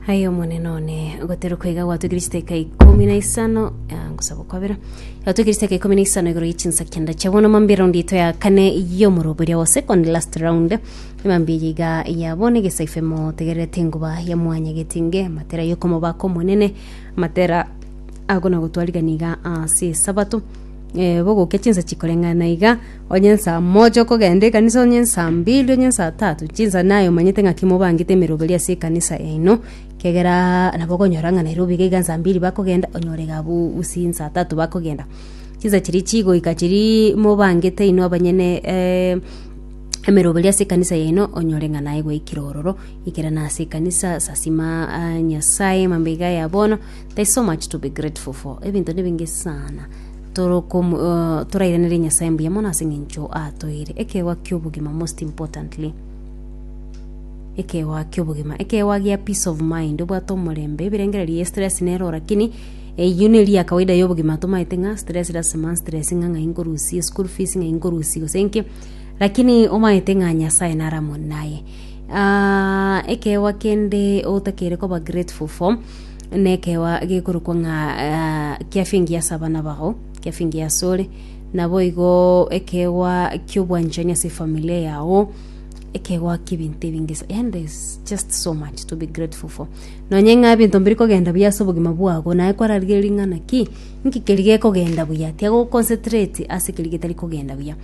Aye omonene one goteruka iga gwatwekire chiteka ikomi na isano ah, ngosaba okwabera gwatwekire chiteka ikomi na isano igoro yechinsa kenda chia bono mambi round ito ya kane yomoroberia wa second last round mambi eye iga ya bono egesaife motegererete enguba ya mwanya getinge matera yokomobaka omonene matera agona gotwarigani iga ase esabato eh, bogokia chinsa chikoreng'ana iga Onye nsaa mocha okogenda ekanisa, onye nsaa mbili, onye nsaa tatu, chinsa naye omanyete ng'aki mobangete emeroberi ase ekanisa yaino, ekiagera nabo okonyora ng'a Nairobi iga iga nsaa mbili bakogenda, onyore iga abwo gusii nsaa tatu bakogenda. Chinsa chiria chigoika chiria mobangete inwe abanyene emeroberi ase ekanisa yaino, onyore ng'a naye gwaikire ororo, ikera na ase ekanisa, sasima Nyasaye mambia iga ya bono, there is so much to be grateful for, ebinto nibinge saana. torokomo torairanere Nyasaye mbuya mono ase eng'encho atoeire ekeegwa ki'obogima most importantly ekeegwa ki'obogima ekeegwa gia peace of mind obwate omorembe ebirengererio ya stress nero lakini eyio neri ya kawaida y'obogima tomaete ng'a stress lasima stress ng'a ng'ai nkorusie school fees ng'ai nkorusie gose nki lakini omaete ng'a Nyasaye naro amo naye ekeegwa kende otakeire koba grateful for nekeegwa gekorokwa ng'a ah, kiafingi ase abana bao kiafingi ase ore naboigo ekeegwa kiobwanchani ase efamilia yao ekeegwa kebinto ebinge sa- and there's just so much to be grateful for nonye ng'a ebinto mbiri kogenda buya ase obogima bwago naye kwararigereria ng'a naki nki keri gekogenda buya tiga oconcentrate ase ekeri getari kogenda buya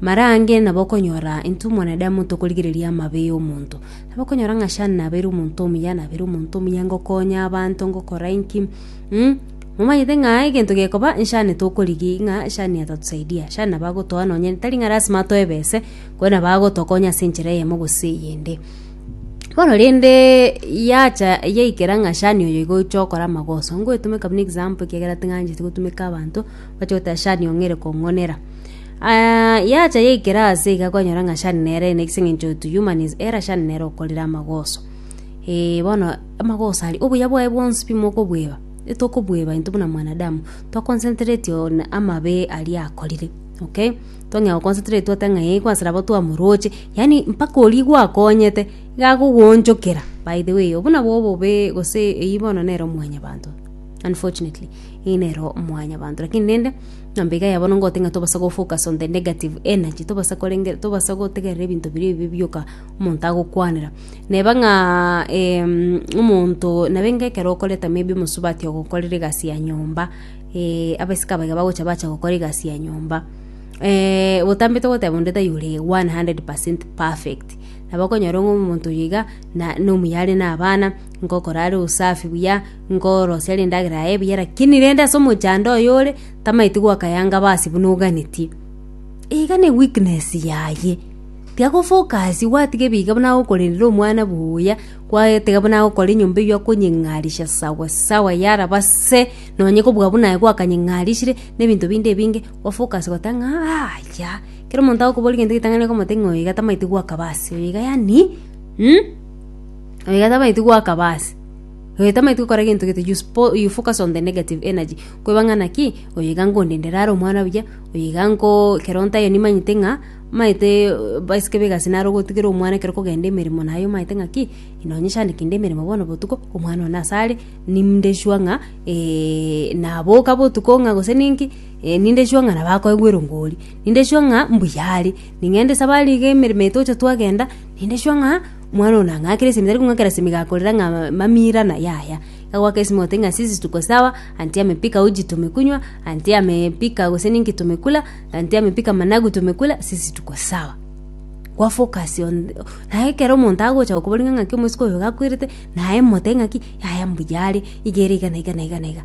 mara ange nabo okonyora intwe mwanadamu tokorigereria amabe ya omonto Abakonyora ng'a Shani nabeire omonto omuya, nabeire omonto omuya ngokonya abanto, ngokora inki, mm, momanyete ng'a egento gekoba nshani tokorigia ng'a shani atatusaidia. Shani nabo agotoa nonye tari ng'a lasima atoe ebese, korende nabo agotokonya ase enchera eyemo gose eyende. Bono rende yacha yaikera ng'a shani oyo iga oche okore amagoso, ngoetumeka buna example ekiagera ting'ancheti gotumeka abanto, bache goteba shani ong'ere kong'onera. Aa, yacha yaikera aase iga kwanyora ng'a shani nere ene ase eng'encho to human is error shani nere okorire amagoso. Eh, bono amagoso aria, obuya bwaye bwonsi pi mokobweba, etokobweba intwe buna mwanadamu, to concentrate on amabe aria akorire, okay? Tong'ea go concentrate oteba ng'a ee gwasira abo twamoroche, yaani mpaka oria igwakonyete, iga agogoonchokera, by the way obwo nabo obobee gose eyio bono nere omwanyabanto unfortunately, eyio nere omwanyabanto lakini rende. Na mbiga ya bono ngote ng'a tobasa go-focus on the negative energy, tobasa korenge, tobasa gotegerera ebinto biria ebibe bioka omonto agokwanera. Neba ng'a em, omonto nabenga ekero okoreta maybe omosubati ogokorera egasi ya nyomba, eh, abasike abaiga bagocha bacha gokora egasi ya nyomba, eh, botambe togoteba onde taiyo ore one hundred percent perfect, nabo okonyora ng'a omonto oyo iga na- nomuya are na abana, ngokora are usafi buya. Nkorosia rindagera yaye buya lakini rende ase omochando oyore tamaeti gwakayanga basi buna oganetie. Iga ne weakness yaye. Tiga gofocus gwatiga ebiga buna agokorerera omwana buya, gwatiga buna agokora enyomba eywo akonyeng'arisha sawa sawa yaraba se, nonye kobua buna aye gwakanyeng'arishire, na ebinto binde ebinge, ofocus gota ng'a yaya. Kera omonto agokoboria egento getang'ani okomotebia ng'a oyo iga tamaeti gwakaba ase, oyo iga yani, oyo iga tamaeti gwakaba ase. Oyotameti gokora gento gete you spo- you focus on the negative energy. Kweba ng'a naki, oyo iga ngondendera are omwana buya, oyo iga nko ekero ntayo nimanyete ng'a maete baisike ba egasi naro gotigera omwana ekero kogenda emeremo naye omanyete ng'a ki, nonye shandiki inde emeremo bono botuko, omwana one nase are, ninde sure ng'a naboka botuko ng'a gose ninki, ninde sure ng'a nabo akoegwa erongo oria. Ninde sure ng'a mbuya are. Ning'ende safari iga emeremo etoche twagenda, ninde sure ng'a. Omwana ona ng'akere esemi tari kong'akera esemi gakorera ng'a mamira na yaya, iga goaka esemi gote ng'a ase esituko sawa, anti ame pika uji tomekunywa, anti ame pika gose ninki tomekula, anti ame pika managu tomekula ase esituko sawa. Kwa focus on naye ekero omonto agocha gokoboria ng'a ng'aki omosike oyo iga akwerete, naye mote ng'aki yaya mbuya are, iga ere iga na iga na iga na iga.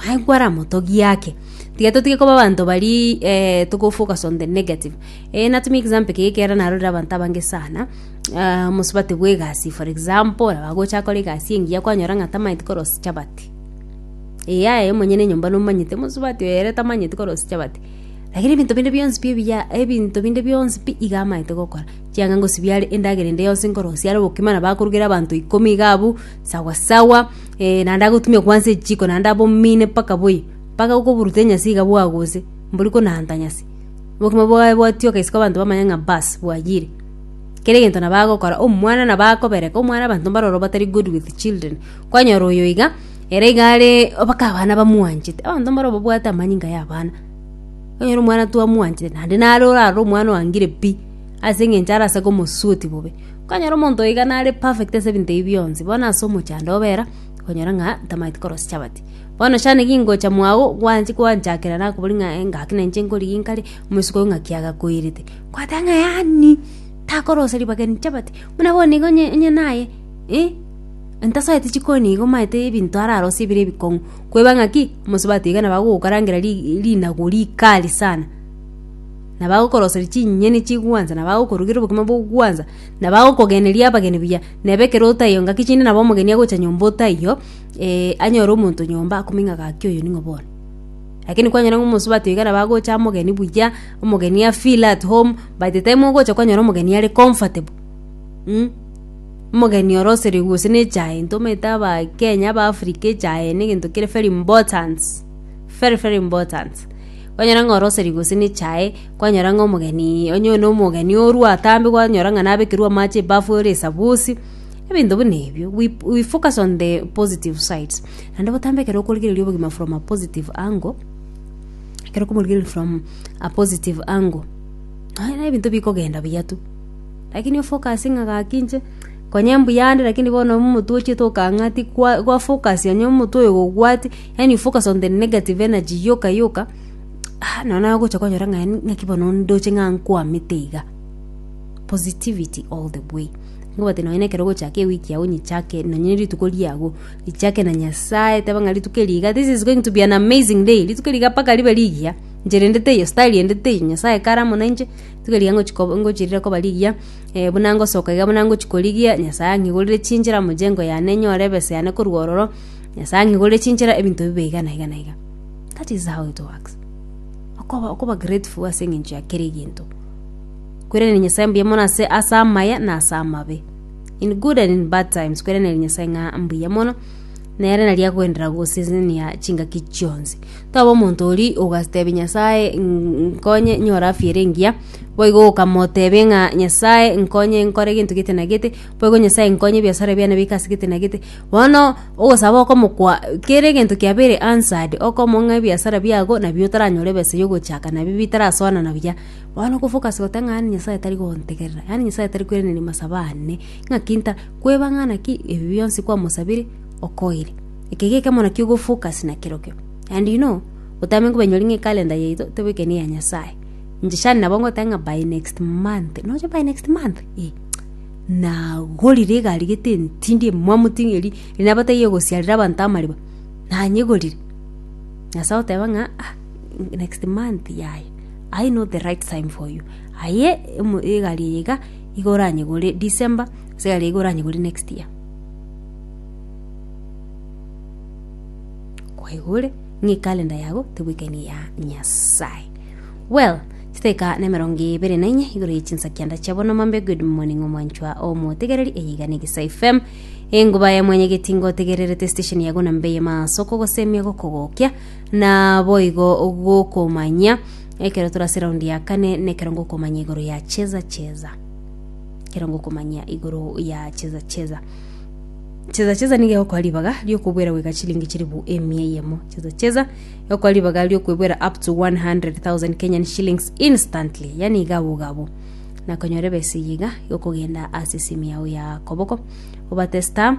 Aye kwaramotogie ake, tiga totige koba abanto baria toko focus on the negative. Ee, natumia example eke ekiagera narorire abanto abange sana, ah, mosubati bw'egasi for example, abagocha akora egasi engiya kwanyora ng'a tamanyeti korosia chabati. Ee aye monyene enyomba nomanyete mosubati oyo ere tamanyeti korosia chabati. Lakini ebinto binde bionsi pi ebiya ebinto binde bionsi pi iga amanyete gokora, chianga ngosibia are endagera ende yonsi nkorosia are obokima nabo akorugera abanto ikomi iga abwo sawa sawa, eh, naende agotumia kobua ase echiko naende abomine mpaka boyie, mpaka okoburuta enyasi iga bwaguse, mbori konaanta nyasi. Obogima bwaye bwatioka isiko abanto bamanye ng'a baas bwayire. Kera egento nabo agokora omwana nabo akobereka omwana abanto mbare ororo batari good with children. Kwanyora oyo iga, ere iga are mpaka abana bamwanchete. Abanto mbare obabwate amanyinga ya abana. Okonyora omwana twamwanchete naende nare orare omwana oangire pi, ase eng'encho arase komosuoti bobe. Okonyora omonto oyo iga nare perfect ase ebinto ebi bionsi, bono ase omochando obera, okonyora ng'a ntamaeti korosia chabati. Bono chande gingocha mwao gwanchi gwanchakera nakoboria ng'a eh, gaki na inche nkorigia inkare, omosiko oyo ng'aki agakoirete. Kwateba ng'a yaani, takoroseria bageni chabati, buna bono nigo onye onye naye, eh, ntasoete chikoni igo maete ebinto ararosie bire ebikong'u. Kweba ng'aki, omosubati iga nabo agogokarangera ri- rinagu rikali sana, nabo agokoroseria chinyeni chigwansa, nabo agokorugeria obokima bogwansa, nabo agokogeneria abageni buya, nabo ekero otaiyo ngaki chinde nabo omogeni agocha nyomba otaiyo. anyore omonto nyomba akome ng'a gaki oyo ning'o bono. Lakini kwanyora ng'a omosubati oiga nabo agocha omogeni buya, omogeni a feel at home, by the time ogocha kwanyora omogeni are comfortable mh, omogeni oroseire gose na echae intwe omanyete abakenya abaafrika echae negento kere very important, very very important. Kwanyora ng'a oroseire gose na echae, kwanyora ng'a omogeni onye one omogeni orwa atambe kwanyora ng'a nabekerwa amache ebafu ore esabusi. ebinto buna ebio we, we focus on the positive sides naende botambe ekero okorigereria obogima from a positive angle ekero okomorigereria from a positive angle naye na ebinto bikogenda buya tu lakini ofocus ng'a gaki inche konye mbuya ande lakini bono omotwe ochiete okang'ati kwa gwafocus onye omotwe oyo gogwati yaani you focus on the negative energy yoka yoka ah nonya nagocha konyora ng'a yaani ng'aki bono ndoche ng'a nkwamete iga positivity all the way. Nkobwate nonye nekero ogochaka ewiki yao nyichake nonye rituko riago richake na nyasaye teba ng'a rituko eri iga this is going to be an amazing day rituko riga mpaka ribe rigiya inche rendete iyo star riendete iyo nyasaye kare amo nainche rituko riga ngochi koba ngochi rire koba rigiya eh, buna ngosoka iga buna ngochi korigia nyasaye ang'igorere chinchera mojengo yane nyore ebesa yane korwa ororo nyasaye ang'igorere chinchera ebinto bibe iga na iga na iga that is how it works okoba okoba grateful ase eng'encho ya kera egento Kwerenera Nyasae mbuya mono ase ase amaya na ase amabe. In good and in bad times kwerenera Nyasae ng'a mbuya mono nere nari akoenderera gosesenia chingaki chionsi. Toba omonto ori ogatebia Nyasae "Ng- nkonye nyore afya ere engiya, boigo okamotebe ng'a Nyasae nkonye nkore gento gete na gete, boigo Nyasae nkonye ebiasara biane bike ase gete na gete. Bono ogosaba okomokwa kere egento kiabeire answered, okomong'a ebiasara biago nabio otaranyore ebesa ya ogochaka nabio bitarasoanana buya. Bono okofokasi goteba ng'a Nyasae tari gontegerera, yaani Nyasae tari koiraneria amasabo ane, ng'aki nta kweba ng'a naki ebi bionsi kwamosabire okoire. Eke nigo ekemo naki ogofokasi na kerokio. And you know, otamenya kobainyoria ng'a ekalenda yaito tebo eke neya Nyasae. Inche share nabo ngoteba ng'a by next month, nonya by next month? Eeh, nagorire egari gete entindi emwamu ting'o eri eri nabataiyo egosiarera abanto amariba, nanyegorire. Nyasae oteba ng'a ah next month yaya. I know the right time for you. Aye emo- egari eye iga iga oranyegore December, ase egari eye iga oranyegore next year. kwaigure ng'a ekalenda yago tebwekani ya nyasaye well chiteka na emerongo ebere na inye igoro yechinsa kianda chia bono mambe good morning omwanchwa omotegereri eyiga na egesa fm enguba ya mwanya getingo otegererete station yago na mbe ye masoko gosemia gokogokia Naboigo gokomanyia ekero tore ase raundi ya kane nekero ngokomanya igoro ya cheza cheza ekero ngokomanyia igoro ya cheza cheza cheza cheza niga egokora ribaga riokobwera goika chilingi chilifu emia eyemo cheza cheza egokora ribaga riokoebwera up to 100,000 Kenyan shillings instantly yaani iga abwo iga abwo nakonyora ebesa eyio iga egokogenda ase esimi yago ya koboko obate star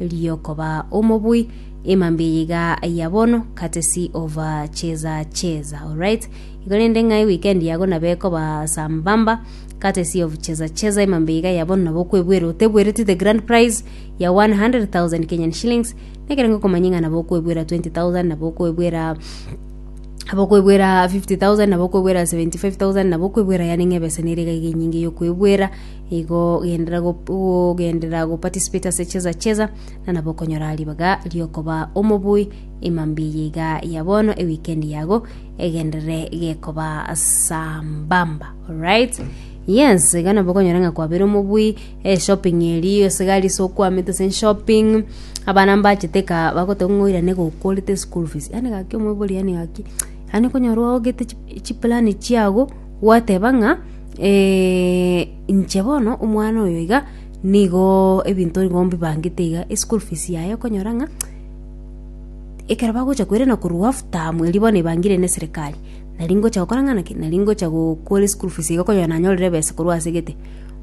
Erio koba omobui emambia eye iga ya bono courtesy of uh, cheza cheza alright igo rende ng'ai weekend yago nabo ekoba sambamba courtesy of cheza cheza emambia iga ya bono nabo okwebwera otebwereti the grand prize ya 100000 kenyan shillings nekere ngokomanya ng'a nabo okwebwera 20000 nabo okwebwera nabo okwebwera 50000 nabo okwebwera 75000 nabo okwebwera yani ng'ebesa nere iga iga enyinge yokwebwera igo ogendera ogendera goparticipate ase cheza cheza na nabo okonyora ribaga riokoba omobui emambi yeiga ya bono ewikendi yago egendere gekoba sambamba alright yes iga nabo okonyora ng'a kwabere omobui eh, shopping eri ase gari ase okwamete ase shopping abana mbachete ka bagoteba ng'a oirane gokworete school fees yani gaki omobori yani gaki yani okonyora ogete chi- chiplan chiago gwateba ng'a Eh, inche bono omwana oyo iga nigo ebinto nigo mbibangete iga eschool fees yaye okonyora ng'a ekero bagocha koirana korwa half term erio bono ebangire ne serikali nari ngocha gokora ng'a naki nari ngocha gokora eschool fees iga okonyora nanyorire ebesa korwa ase gete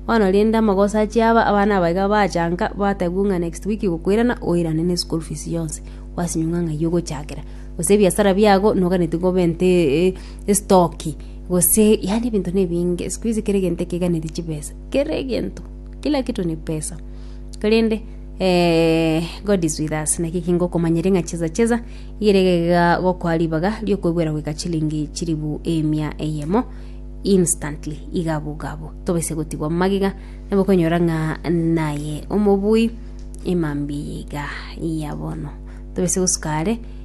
bono rende amagoso achia aba abana aba iga bachanka batebiwa ng'a next week gokoirana oirane ne eschool fees yonsi gwasinywa ng'a ng'ai ogochakera gose ebiasara biago noganetie gobe nte estoki Gose yaani ebinto nebinge siku hizi kera egento ekeganeti chibesa kera egento kila kitu ni pesa korende eh, god is with us naki kingo komanyere ng'a cheza cheza igeregega gokoa ribaga riokoigwera goika chilingi chiribu emia eyemo instantly igabu gabu tobese gotigwa magiga nabo konyora ng'a naye omobui emambi yiga yabono tobese gosukare